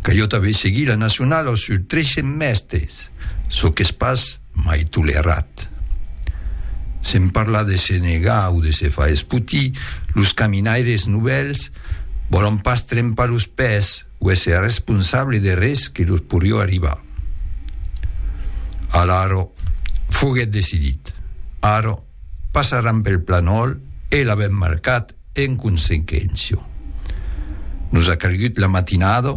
Que jo t'avè seguit la nacionala sus tres semèstres, çò qu'es pas mai tolerat. Sen parlar de se negar o de se far espotir, los caminaires novèls vòlon pas trempar los pès o èsser responsable de res que los porió arribar. Alara, foguèt decidit. Ara. Passaràn pel planòl e l'avèm marcat en consequéncia. Nos a calgut la matinada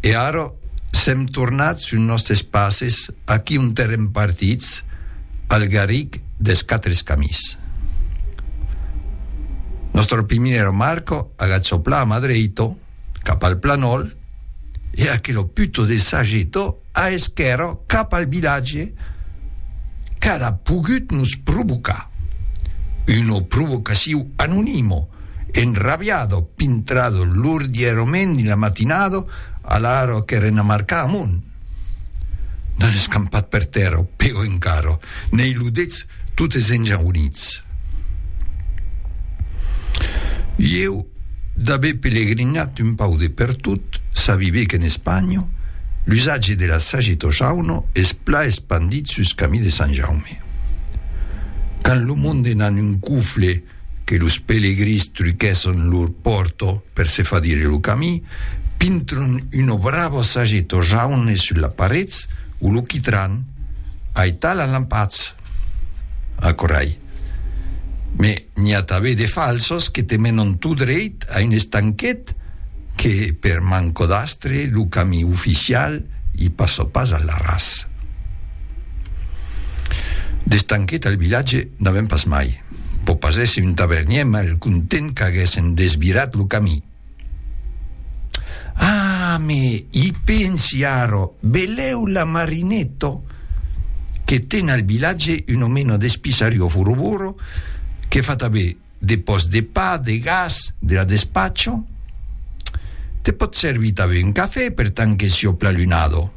e ara sèm tornats sus nòstes passes aquí ont èrem partits al garric dels Quatre Camins. Nòstra primera marca, agachopla a mà dreita, cap al planòl, e aquelo puto de Sageto a esquèrra cap al vilatge, qu'ara pogut nos provocar una provocaciu anonimo, enrabiado, pintrado lordierament dins la matinada, a l'ara qu'èren a marcar amont. N'an escampat per tèrra, o peor encara, n'ei ludets totes enjaunits. Ieu, d'aver pelegrinat un pau de pertot, sabibe qu'en Espanha, l'usatge de la sageta o jauna es plan espandit sus camí de Sant Jaume. Quand lo monde n'an un cufle, que los pelegrins truquèsson lor pòrto per se far dire lo camí, pintron una brava sageto jaune sus la parets o lo quitran aital a lampatz. Aquòrai. Me n'i a tabé de falsos que te menon tot dreit a un estanquet que, per manco d'astre, lo camí oficial i passa pas al ras. D'estanquet al vilatge n'avèm pas mai. Pò pas èsser un tavernièr mal content qu'aguèssen desvirat lo camí. Ah, me i pensi ara, velèu la Marinetto? Que ten al vilatge un omena d'espissario foroboro que fa tanben de pòst de pa, de gas, de la despatcho. Te pòt servir tanben un cafè per tant que siò pl'alunado.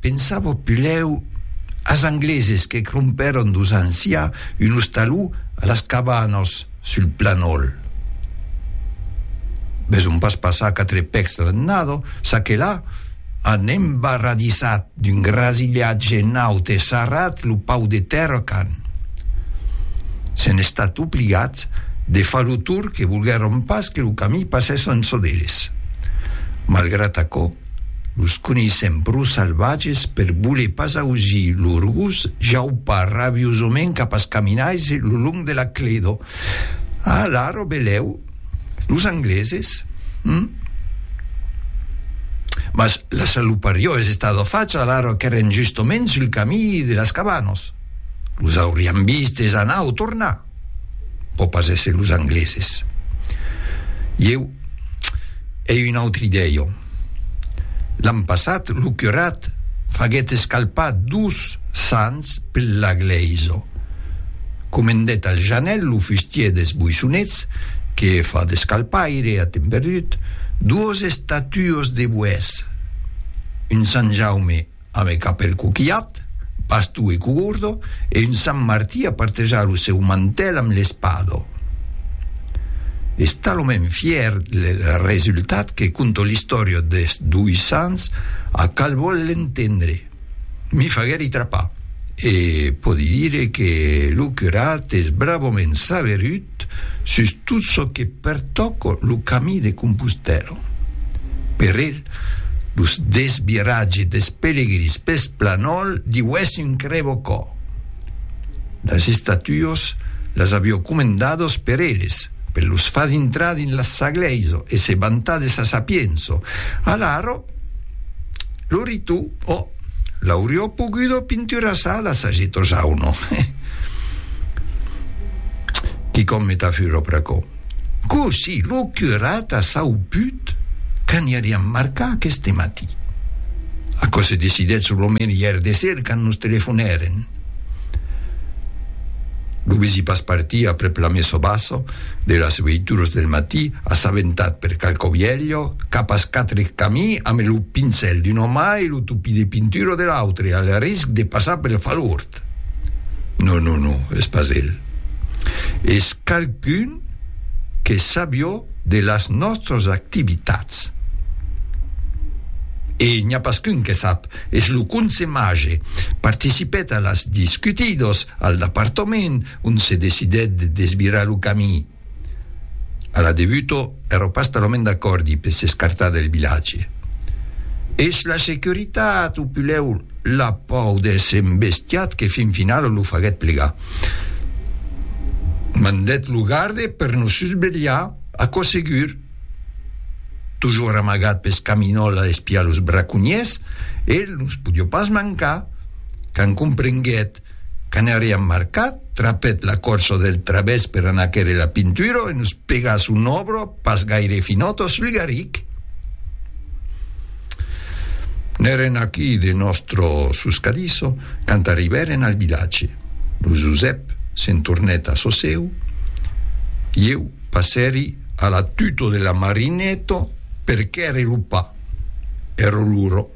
Pensavo pulèu as angleses que crompèron dos ans siá un ostaló a las cabanas sul Planòl. Mès òm pas passar quatre pècs dans un nadó, ça que là an embarradissat d'un grasilhatge naut e sarrat lo pau de tèrra qu'an s'en estat obligats de far lo tour que volguèron pas que lo camí passèsse en çò d'eles. Malgrat aquò, Los coneissèm pro salvatges per voler pas ausir lor gos jaupar rabiosament cap as caminaisses lo long de la cledo. Alaro belèu, los angleses? Hum? Mas la saluparió es estada facha alaro qu'èren justoments sul camí de las cabanas. Los aurián vistes anar o tornar. pò pas èsser los angleses. Ieu ei un autre idèio. L'an passat lo curat faguèt escalpar dus sants per la glèisa. Comendèt al Janèl lo fustier des Boissonets que fa d'escalpaire a temps perdut, duos estatuos de boès, un Sant Jaume Amb eth capèl coquilhat, bastó e cogordo, e un Sant Martí a partejar lo seu mantèl amb l'espado. Es talament fièr del resultat que conto l'istòria des doi sants a cal vòl l'entendre. M'i faguèri trapar e pòdi dire que lo curat es bravament saberut Art. Sus tot çò que pertòca lo Camí de Compostèla. Per el, los desviratges des pelegrins peth planòl diuèsse un crevocò. Las estatuas las avió comendadas per eles, per los far dintrar dins la sa glèisa e se vantar de sa sapiença. Alara, lo ritu o. L'aurió pogudo pinturar ça, la sagito Jauno. Quicòm me tà furo pr'aquò. Cossí lo curat a sauput qu'aniariam marcar aqueste matí? Aquò se decidèt solomènt ièr de ser quand nos telefonèren. Lo vesi pas partir aprèp la messa bassa de las veituras del matí, assabentat per qualqu'ò vièlho, qu'a pas quatre camí ame lo pincèl d'una mà e lo topí de pintura de l'autre, al risc de passar pel falhort. Non, non, non, es pas el. Es qualqu'un que sabió de las nòstras activitats. E n'i a pas qu'un que sap Es lo conse mage. Participèt a las discutidos al dapartament ont se decidèt de desvirar lo camí. A la debuto èro pas talament d'acòrdi per s'escartar del vilatge. Es la securitat o pulèu la pòu d'èsser embestiat que fin finala lo faguèt plegar. Mandèt lo garde per nos susvelhar, aquò segur. Tojor amagat pes caminòls a espiar los braconhiers, el nos podió pas mancar. Quand comprenguèt qu'anariam marcat, trapèt la corsa del travèrs per anar quèrre la Pinturo e nos pegà son òbro pas gaire finòt o sulgaric. N'èren aquí de nòstro suscadisso quand arribèren al vilatge. Lo Josèp se'n tornèt a çò seu, ieu, Passèri a la tuto de la Marineto per quèrre lo pa. Ero luro.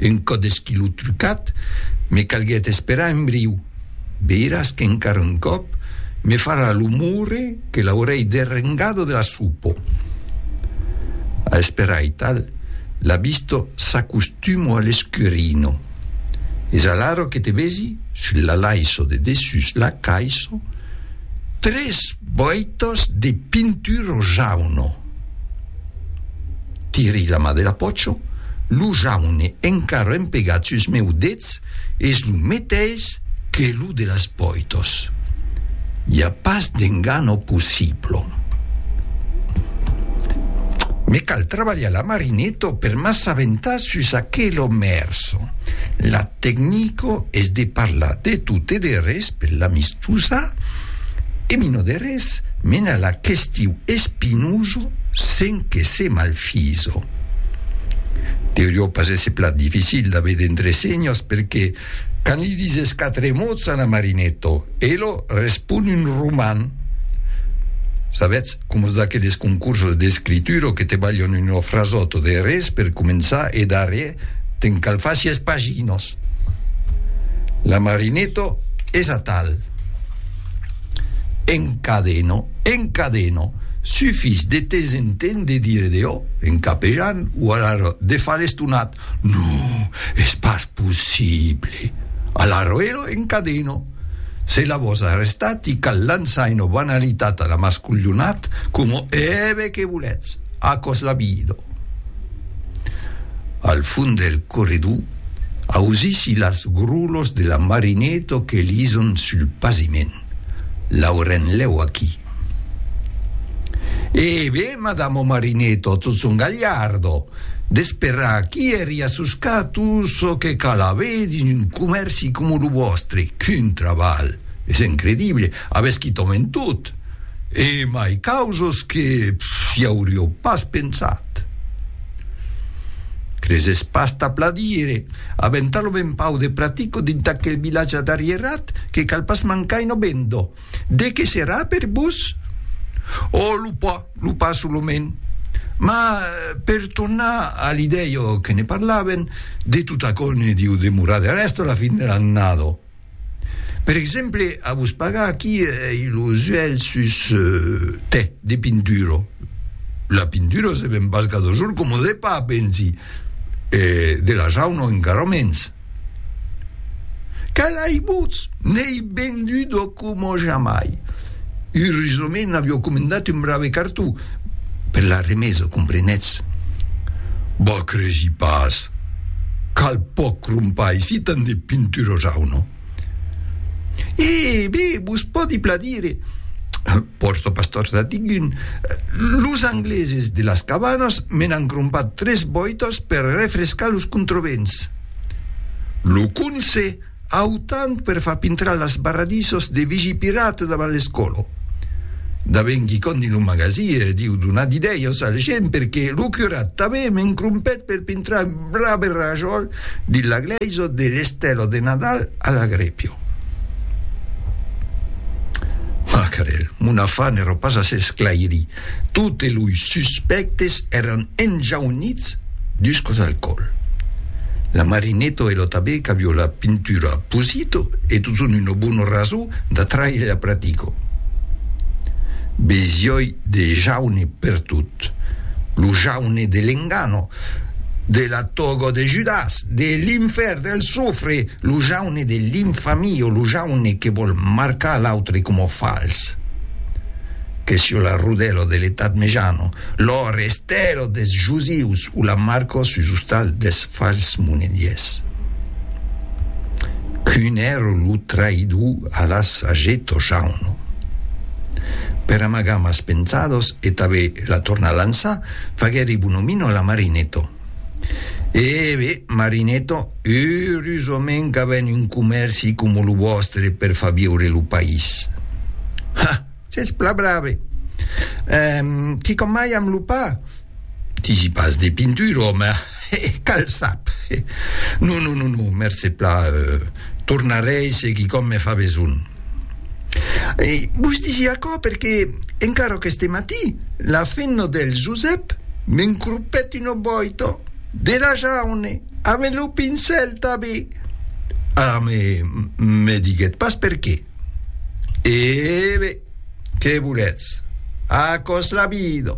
Un còp deschilot trucat, me calguèt esperar un briu. Veiràs qu'encara un còp me farà lo moure que l'aurèi derrengado de la supo. A esperar aital, la visto s'acostumo a l'escurino. Es alaro que te vesi sul lalaiso de dessús la caiso tres boitos de pinturo jauno. Tiri la mà de la pòcho, lo jaune encara empegat sus meu dets es lo meteis que lo de las boitos. I a pas d'engano possiblo. Me cal trabalhar la marineto per m'assabentar Sus aquelo mèrso, la tecnico es de parlar de tot e de res per l'amistosa e mino de res mena la questiu espinoso sen que se malfiso. Deurió pas èsser plan dificil d'aver d'entresenhas perque Quand li dises quatre mots a Namarinetto, elo respon un roman. Sabetz, coma d'aqueles concursos d'escritura o que te balhon una frasòta de res per començar e darrier te'n cal far sièis paginas. Namarinetto es atal. Encadeno, encadeno. Sufís de temps en temps de dire de o en capejan o alara de far l'estonat. Non, es pas possible! A l'arroero en cadeno! Se la vos arrestat i cal lançar ena banalitat a la masculhonat coma eve que voletz, aquò's la vida! Al fond del corredor, ausissi las grolos de la Marineto que lison sul pasiment, Laurenlèu aquí! E ben, madamo Marineto, tot son galhardo! D'esperar qui èri a soscar tot çò que cal aver dins un comèrci coma lo vòstre, qu'un trabalh! Es incredible! Avètz quitau en tot! E mai causas que i auriau pas pensat! Cresètz pas tà pladire! Avèm talament pauc de pratico dins aquel vilatge d'arrierat que cal pas mancar una benda! De qué serà per vos? Oh, lo pa, lo pa solament. Mas, per tornar a l'idèia que ne parlaven, de tot aquò ne diu demorar de rèsta la fin de l'annada. Per exemple, a vos pagar aquí ei lo zuèlh sus tè de pintura. La pintura se ven pas cada jorn coma de pa, pensi, e de la jauna encara mens. Calaibots! N'ei bendudo coma jamai! Urosament avio comendat un brave cartó per la remesa, comprenetz. Vos cresi pas qu'al pòc crompais si tant de pintura jauna! E, be, vos pòdi pladire. Pòrto pas tòrts a dingun. Los angleses de las cabanas me n'an crompat tres bòitas per refrescar los controvents. Lo conse autant per far pintrar las barradissas de vigipirata davant l'escòla. Daben quicòm dins lo magasie diu donar d'idèias al gent perque lo curat tanben m'encrompèt per pintrar un braberrajòl Dins la glèisa de l'Estèla de Nadal a la Grèpia. Macarèl, mon afar n'èra pas a s'esclairir, totes loi suspèctes èran enjaunits dus còps al còl. La Marineto e lo Tabé qu'avió la pintura Pusito e totun una bona rason d'atraire la pratica. Besioi de jaune pertot. Iesus, lo jaune de l'engano, de la togo de Judas, de l'infèrn, del sofre, lo jaune de l'infamio, lo jaune que vòl marcar l'autre coma fals. Que sieu la Rodelo de l'Etat Mejano, lo Restelo des Jusius o la Marco sus ostal des fals monediers. Qu'un èra lo traïdor Alas hagé tojar un nom. Per amagar mas pensados e tanben la tornar lançar, faguèri bonomino la Marineto. E be, Marineto, eurusament qu'avèn un comèrci coma lo vòstre per far viure lo país. Ha! S'es plan brave. Ehm, quicòm mai amb lo pa? Digi pas de pintura, òme, he, cal sap. He, non, non, non, non, mercé plan, euh, tornarei se quicòm me fa besonh. E vos digi aquò perque encara aqueste matí la fenna del Josèp m'encropèt una boita de la jaune ame lo pincèl tabé. Ara me, me diguèt pas perqué. E bè, qué voletz? Aquò's la vida!